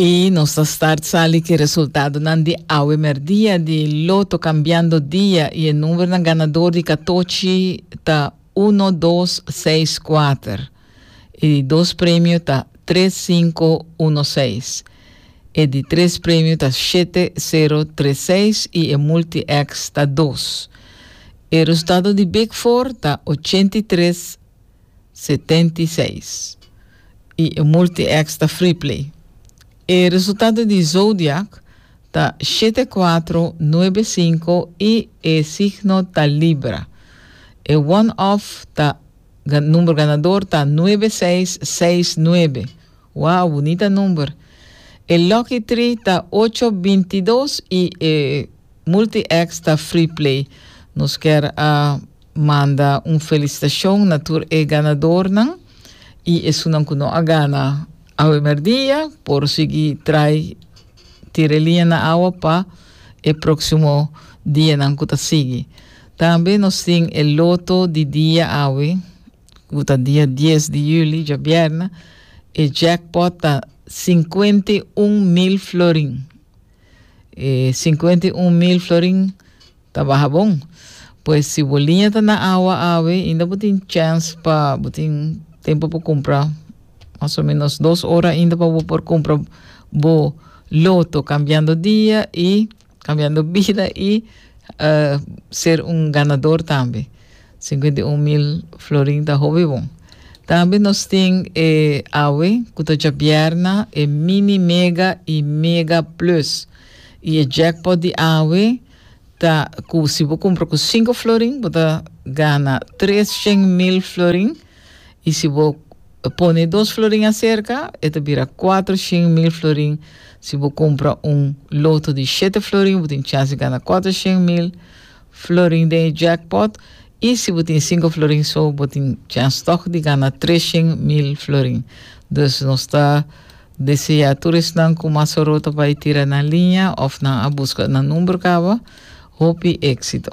Y nos ta start sali ki resultadonan di awe merdia di Loto Cambiando Dia y e numbernan ganador di katochi ta uno, dos, seis, kuater. E di dos premio ta tres, sinku, uno, seis. E di tres premio ta shete, sero, tres, seis y e multi-X ta dos. E resultado di Big Four ta ochenta i tres, setenta i seis, i e multi-X ta Freeplay. E resultado di Zodiac ta shete kuatro, nuebe sinku i e signo ta Libra. E one-off ta, number ganador ta nuebe seis, seis nuebe. Wow, bunita number. E Lucky Tree ta ocho bintidos y e Multi X ta Free Play. Nos ker a manda un felicitacion na tur e ganadornan y esunnan cu no a gana awe merdia por sigui trai tira e liña na awa pa e proximo dianan cu ta sigui. Tambe nos tin e Loto di dia awe. Cu ta dia dies di juli, djabièrna, e jackpot ta sinkuenta i un mil florin. E sinkuenta i un mil florin ta baha bon. Pues si bo liña ta na awa awe, inda bo tin chèns pa, bo tin tempu pa kumpra, mas o menos dos ora inda pa bo por kumpra bo loto, kambiando dia i. cambiando bida y ser un ganador tambe. Cincuenta y un mil florin ta hopi bon. Tambe nos tin e awe cu ta djabierna e Mini Mega y Mega Plus. Y e jackpot di awe ta cu si bo cumpra cu cinco florin bo ta gana trescen mil florin. Y si bo pone dos florin acerca, e ta bira cuatro shen mil florin. Si bo cumpra un loto di shete florin, bo tin chans di gana cuatro shen mil florin den e jackpot. Y si bo tin cinco florin so, bo tin chans toch di gana tres shen mil florin. Dus nos ta desea tur esnan cu mas oro ta bay tira nan linea of nan a busca nan number caba. Hopi exito!